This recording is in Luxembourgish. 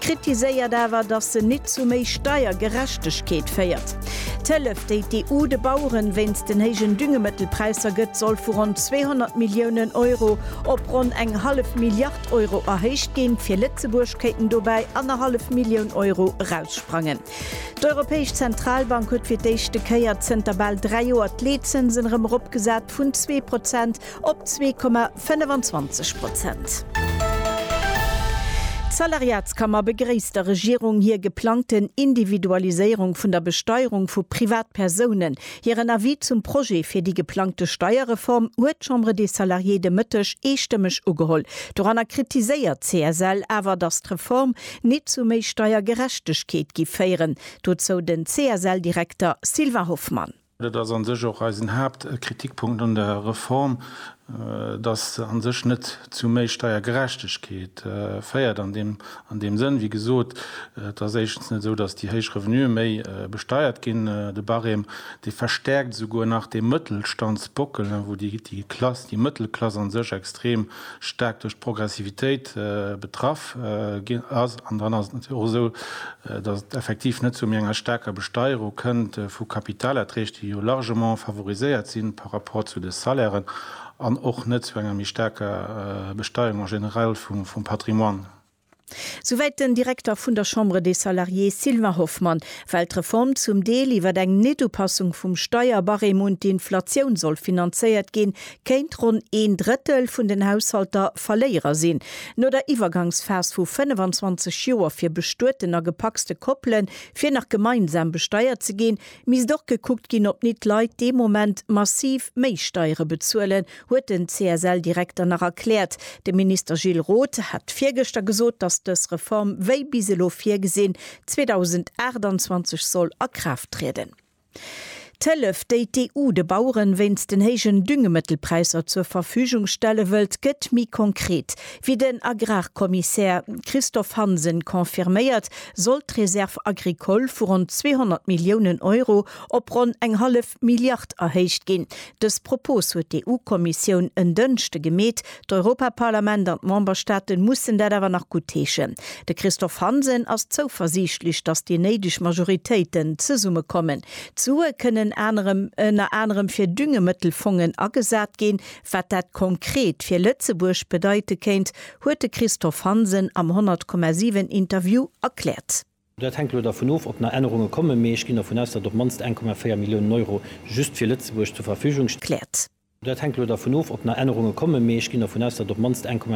kritiséiert awer, datt se nit zu méi Steiergerechtegkeet féiert. D'Hëllef, déi d'EU de Baueren wéinst den héijen Düngemëttelpräisser gëtt, soll vu ronn 200 Milliounen Euro op ronn eng hallef Milliard Euro erhéicht ginn. Fir Lëtzebuerg kéinten dobäi annerhallef Millioun Euro eraussprangen. D'Europäesch Zentralbank huet fir d'éischte Kéier zënter bal dräi Joer d'Leetzënsen erëm eropgesat vun zwee Prozent op zwee Komma. 25 Prozent. D'Salariatskammer begréisst der Regierung hir geplangten Individualiséierung vun der Besteierung vu Privatpersounen. Hiren Avis zum Projet fir déi geplangte Steierreform huet d'Chambre des Salariés de Mëtteg eestëmmeg ugeholl. Doranner kritiséiert d'CSL awer, datt d'Reform nit zu méi Steiergerechtegkeet gi féieren. Dozou den CSL-Direkter Sylvain Hoffmann. Dat ass a sech och eisen Haaptkritikpunkt un der Reform, dass se a sech net zu méi Steiergerechtegkeet féiert. An deem Sënn, wéi gesot, et ass éischtens net esou, dass déi héich Revenuë méi besteiert ginn. De Barème, dee verstärkt esouguer nach dee Mëttelstandsbockel, wou déi Klass, déi Mëttelklass a sech extrem staark duerch d'Progressivitéit betraff ass. An dann ass et natierlech och esou, datt et effektiv net zu méi enger staarker Besteierung kënnt vu Kapitalerträg, déi jo largement favoriséiert si par rapport zu de Salairen, an och net zu enger méi staarker Besteierung en général vum Patrimoine. Souwäit den Direkter vun der Chambre des Salariés Sylvain Hoffmann. Well d'Reform zum Deel iwwer eng Netupassung vum Steierbarème un d'Inflatioun soll finanzéiert ginn, kéint ronn een Drëttel vun den Haushalter Verléierer sinn. No der Iwwergangsphas vu 25 Joer fir bestueten a gepacste Koppele fir nach gemeinsam besteiert ze ginn, misst och gekuckt ginn, ob nit d'Leit dee Moment massiv méi Steiere bezuelen, huet den CSL-Direkter nach erkläert. De Minister Gilles Roth hat virgëschter gesot, datt dës Reform, wéi bis elo virgesinn, 2028 soll a Kraaft trieden. D'Hëllef, déi d'EU de Baueren wéinst den héijen Düngemëttelpräisser zur Verfügung stelle wëllt, gëtt méi konkret. Wéi den Agrarkommissär Christophe Hansen confirméiert, soll d'Réserve agricole vu ronn 200 Milliounen Euro op ronn eng hallef Milliard erhéicht ginn. Dës Propos huet d'EU-Kommissioun en Dënschde gemeet, d'Europaparlament an d'Memberstaaten mussen dat awer nach guttheeschen. De Christophe Hansen ass zouversiichtlech, datt déi néideg Majoritéiten zesummekommen. D'Sue kënnen anerem ënner anerem fir Düngemëttelfongen agesat ginn. Wat dat konkret fir Lëtzebuerg bedeite kéint, huet de Christophe Hansen am 100,7 Interview erkläert. Dat hänkt elo dervun of, ob nach Ännerunge kommen, mee ech ginn dervun aus, datt op d'mannst 1,4 Milliounen Euro just fir Lëtzebuerg zur Verfügung. Kläert. Dat hänkt elo dervun of, ob nach Ännerunge kommen, mee ech ginn dervun aus, datt op d'mannst 1,4.